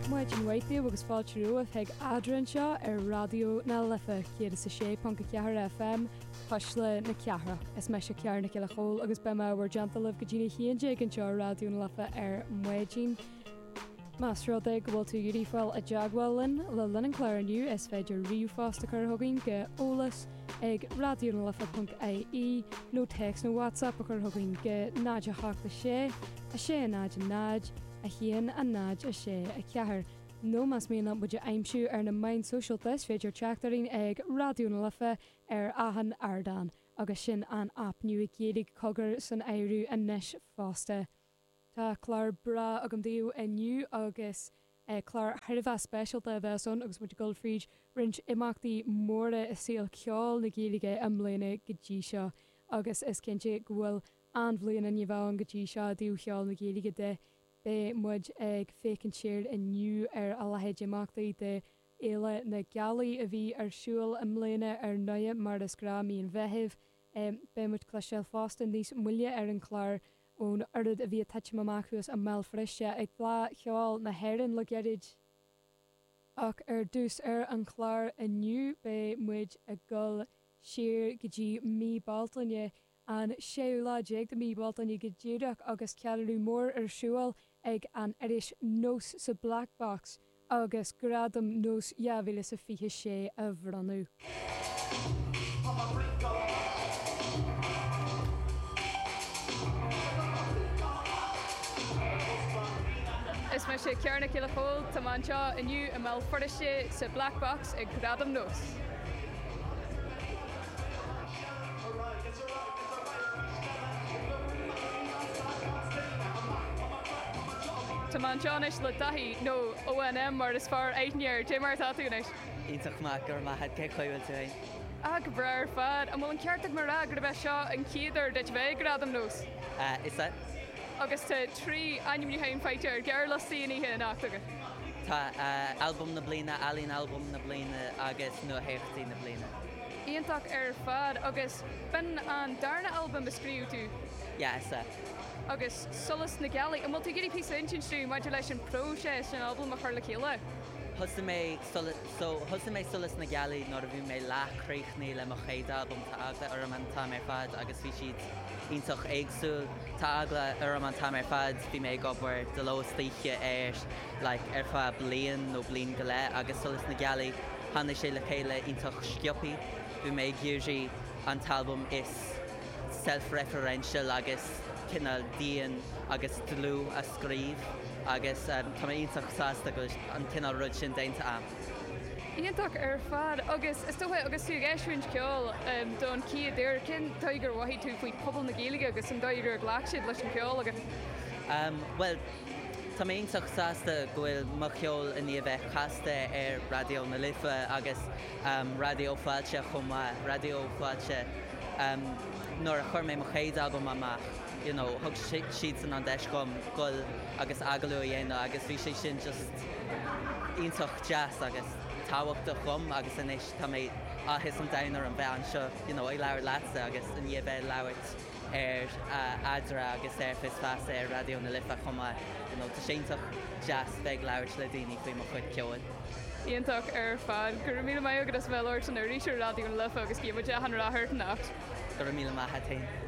Maidin mhaith daoibh agus Fáilte Romhat chuig Eadra anseo ar Raidió na Life 106.4 FM, Cuisle na Cathrach. Is mise Ciara Nic Giolla Chomhaill agus beidh mé i bhur dteannta libh go dtí'n 11 anseo ar Raidió na Life ar maidin. Más rud é go bhfuil tú ag iarraidh fáil i dteagmháil linn le linn an chláir inniu is féidir ríomhphost a chur chugainn go eolas, ag Raidió na Life ponc IE nó téacs nó WhatsApp a chur chugainn go 086 600 1064 nó más mian leat muid a aimsiú ar na meáin shóisialta is féidir teacht orainn ag Raidió na Life ar achan ardán agus sin an aip Nua Gaeilge Cogar san áireamh anois fosta. Tá clár breá agam daoibh inniu agus clár thar a bheith speisialta a bheas ann agus muid ag dul fríd roinnt imeachtaí móra i saol ceoil na Gaeilge i mbliana go dtí seo agus is cinnte go bhfuil an-bhliain i ndiaidh a bheith againn go dtí seo i dtaobh cheol na Gaeilge de. Beidh muid ag féachaint siar inniu ar a leithéid d'imeachtaí de Fhéile na Gealaí a bhí ar siúl i mbliana ar ndóigh mar is gnáth mí an Mheithimh. Beidh muid ag cloisteáil fosta níos moille ar an chlár ón oiread a bhí ag titim amach thuas i mBéal Feirste ag Fleadh Cheoil na hÉireann le gairid. Ach ar dtús ar an chlár inniu beidh muid ag dul siar go dtí mí Bealtaine, an séú lá déag de mhí Bhealtaine go díreach agus ceiliúradh mór ar siúl ag an iris Nós sa Black Box, agus Gradaim Nós 2026 á mbronnadh. Is mise Ciara Nic Giolla Chomhaill. Tá mé anseo inniu i mBéal Feirste sa Black Box ag Gradaim Nós. Tá mé anseo anois le Daithí, nó ODM mar is fearr aithne air. Cad é mar atá tú anois? Iontach maith, go raibh maith a't. Cén chaoi a bhfuil tú fhéin? Ah, go breá ar fad. An bhfuil an ceart agam a rá gurb é seo an chéad uair duit a bheith ag Gradaim nós? Ah, is ea. Agus tá trí ainmniúcháin faighte ar ghearrliostaí na hoíche anocht agat. Tá, Albam na Bliana, Ealaín Albaim na Bliana agus Nuatheachtaí na Bliana. Iontach ar fad. Agus b'in an darna albam a scríobh tú? Yeah. Agus Solas na Gealaí. An bhfuil tú ag iarraidh píosa a insint dúinn maidir leis an phróiseas an albam a chur le chéile? Thosaigh mé Solas, so, thosaigh mé Solas na Gealaí nuair a bhí mé leath críochnaithe le mo chéad albam, tá eagla orm an t-am ar fad agus bhí siad iontach éagsúil, tá eagla orm an t-am ar fad, bhí mé ag obair de ló is d'oíche air like ar feadh bliain nó bliain go leith agus Solas na Gealaí, Tháinig sé le chéile iontach sciobtha. Bhí mé ag iarraidh an t-albam is self-referential agus cineál dian agus dlúth a scríobh agus tá mé iontach sásta go bhfuil an cineál rud sin déanta agam. Iontach ar fad agus is dócha agus tú ag eisiúint ceoil don chéad uair, cén dóigh ar mhothaigh tú faoi pobal na Gaeilge agus an dóigh ar ghlac siad leis an gceol agat? Bhuel, Tá mé iontach sásta go bhfuil mo cheol i ndiaidh bheith casta ar Raidió na Life agus Raidió Fáilte chomh maith. Raidió Fáilte, nuair a chuir mé mo chéad albam amach, you know, thug siadsan an deis domh gabháil agus agallamh a dhéanamh agus bhí sé sin just iontach deas agus tábhachtach domh agus anois tá mé, áthas an domhain orm bheith anseo, you know, ag labhairt leatsa agus i ndiaidh bheith ag labhairt. ar Nead Rua agus ar Fios Feasa ar Raidió na Life chomh maith. You know, tá sé iontach deas bheith ag labhairt le daoine faoi mo chuid ceoil. Iontach ar fad. Go raibh míle maith agat as a bheith labhairt linn arís ar Raidió na Life agus guím gach rath ort anocht. Go raibh míle maith agat féin.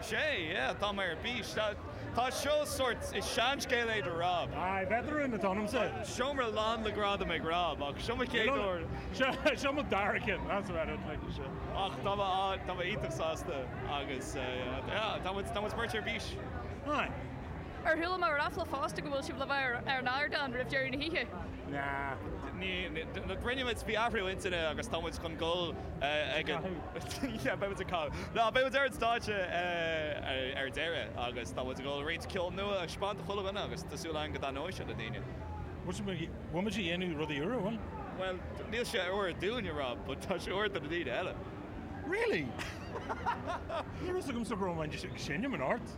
Sea, yeah, tá mé ar bís. Tá, tá seo sórt, is seanscéal é do Rob. Aye, bheith de rún le t'anam sa. Seomra lán le gradam ag Rob, ach seo mo chéad Nó, uair. seo, seo mo dara ceann, that's about it, like, seo. Ach tá mé á, tá mé iontach sásta agus, eh, yeah, tá muid, tá muid beirt ar bís. Aye. Ar chuala mé ráfla fosta go bhfuil sibh le bheith ar, ar an ardán roimh deireadh na hoíche? Nah. Ní, ní, d- d- rinne muid athrú intinne agus tá muid chun goil eh, ag canadh. Yeah, beidh muid ag canadh. Ná, beidh muid ar an stáitse ar deireadh agus tá muid ag dul roinnt ceol nua a thaispeáint do chuile dhuine agus tá súil againn go dtaitneoidh sé le daoine. Bhuel, bhfuil muid ag dhéanamh rudaí úra, bhfuil? Bhuel, níl sé úr dúinn, a Rob, but tá sé úr do na daoine eile. Really? Ní raibh a fhios agamsa go raibh mé ag seinm anocht.